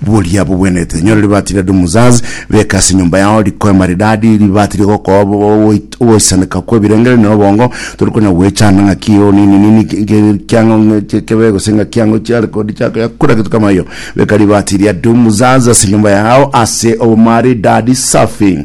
Boria bogwenerete enyora ribaati ria Dumuzaz, beka ase enyomba yao riko rimaridadi, ribaati ria ogokoa ogoisaneka kw'ebirengererio na obongo, tori konya goechanda ng'aki eye onini-nini ng'ekiang'o kebe gose ng'ekiang'o chiare kori chiakoya kura getu kamayo. Beka ribaati ria Dumuzaz ase enyomba yao ase obomaridadi safi.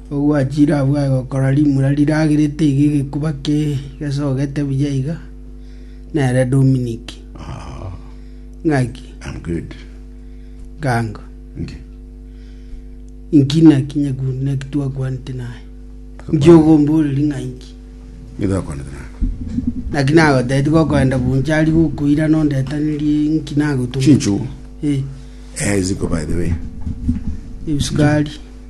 Ogwachire abwo agokora rimura riragerete iga egekuba kegesogete buya iga, nere Dominiki. Ah, Ng'aki? I'm good. Gango. Nge. Inki naki nyakuru naki twakwanete naye? Inki ogomboreri ng'a inki? Nigo akwanete naye. Naki nagoteti gokoenda buncha ari gokoira nondetenerie inki nagotuma. Chinchugu. Eh, Eh, ziko by the way. ebisukari.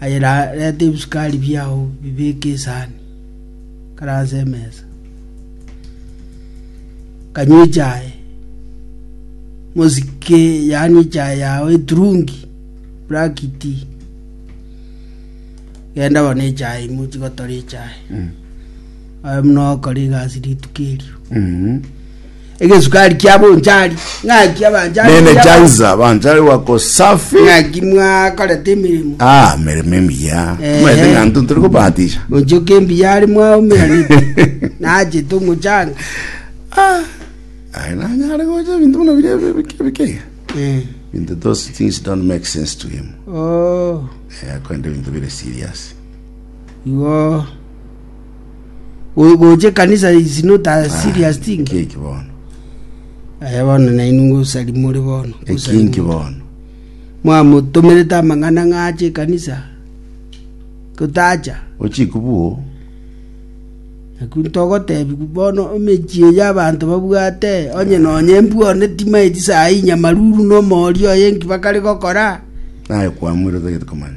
Aye reta ebisukari biao bibeke esani kare ase emesa. Kanywa echae, mosike yaani echae yao eturungi, black tea. Genda bono echae imwe chigotora echae. Aye muna okora egasi rituko erio. Egesukari kia bonchari. Ng'aki abanchari. Nene chaiza banchari wako safi. Ng'aki mwakorete emeremo. Ah, meremo emiya. Ehe. Maete ng'anto ntore kobatisha. Onchoke embiya are mwaumeranete. Nachete omochanga. Aye nanyare gocha ebinto buna biria bi- bike bike. Eh. Into those things don't make sense to him. Oh. Eh, akwenda ebinto bire serious. Igo. Go- gocha ekanisa is not a serious Ah, thing Keki bono. aya bono nainwe ngosari more bono ngosari Ekinki more. bono. mwamotomerete amang'ana ng'ache ekanisa gotacha Ochikubuo. naku togotebi bono emechie ya abanto babwate onye nonye embwone timaeti sayi nyamaruru nomori oye nki bakare gokora Naye kwamwire otagete komanya.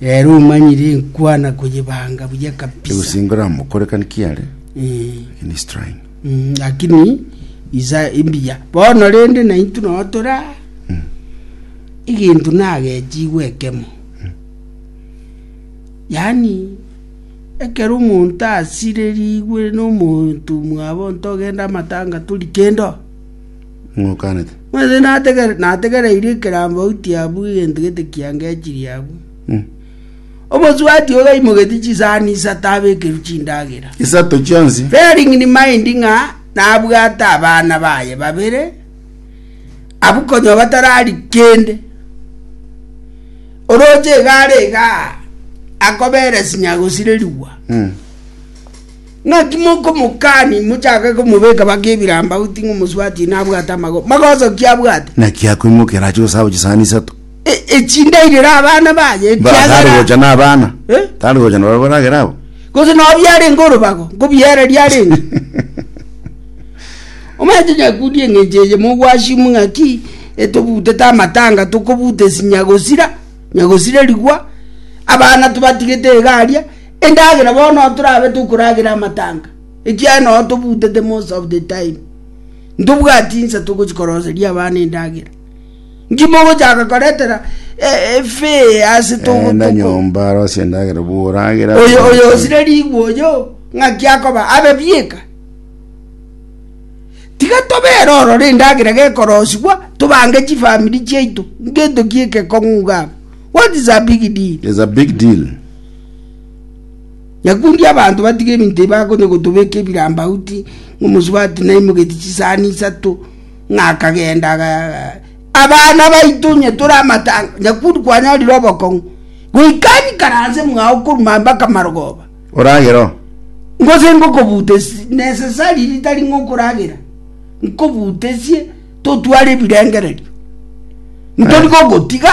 Reero omanyire enkwana koyebanga buya kabisa. Egosingora mokorekani kiare Eh, in his trying. mm, lakini isa imbiya bono rende naintu noo tora egento nagechigwe ekemo yaani ekero omonto asirerigwe nomonto mwabo ntogenda amatanga tori kendo Ng'okanete. Ng'wete nategere- nategereirie ekerambe oitie abwo egento gete kiangechirie abwo. Mm. Omosubati ogaimogetie chisani isato abekerwe chindagera. Isato chionsi. Bearing in mind ng'a nabwate abana baye babere abwo konya batarari kende. Oroche egare igaa, akobera sinya gosirerigwa. Mm. Naki mokomokani mochake komobeka bake ebirambauti ng'a omosubati nabwate amagoro, magoso ki abwate? Naki akoimokeraa ache gosaba chisani isato. E- Echindairire abana baye Mba, tari ekiagera gocha nabana Eh? tari gocha nabarabwo baragere abo gose nao biarenge orobago nkobiereria arenge omanye tinyakundi eng'encho eye mogwashimu ng'aki etobutete amatanga tokobuta esinya gosira nyagosirerigwa abana tobatigete egaria Endagera bono ntorabe tokoragera amatanga, ekiagera nonya tobutete most of the time, ntobwati insa togochi koroseria abana endagera. Nki mogochaka koretera efee ase toko Enda toko? nyomba arosie endagera bworagera. Oyo oyo osire rigwa oyo ng'aki akoba abe bieka. Tiga tobere ororo endagera gekorosigwa tobange chifamiri chiaito, ngento ki egekong'u iga abwo. What is a big deal? Is a big deal. Nyakundia abanto batige ebinto ebi bakonya gotobeka ebirambauti, omosubati naimogetie chisani isato, ng'a akagenda abana baito onye tore amatanga nyakundi kwanyorire obokong'u goikani karanse mwa okoruma mpaka marogoba oragero ngose ngokobute nesesari ritari ng'okoragera nkobutesie totware ebirengererio ntori gogotiga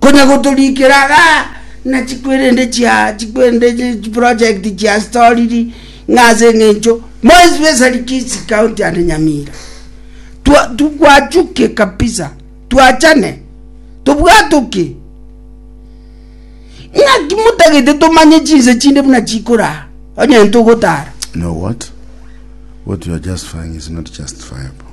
Konya gotorikera iga na chikwerende chia chikwerende chi chi project chia storiri ng'a ase eng'encho more especially Kisii county and Nyamira twa twachuke kabisa twachane tobwatoke ng'aki motagete tomanye chinse chinde buna chikoraa onye ntogotara. You know what? What you are justifying is not justifiable.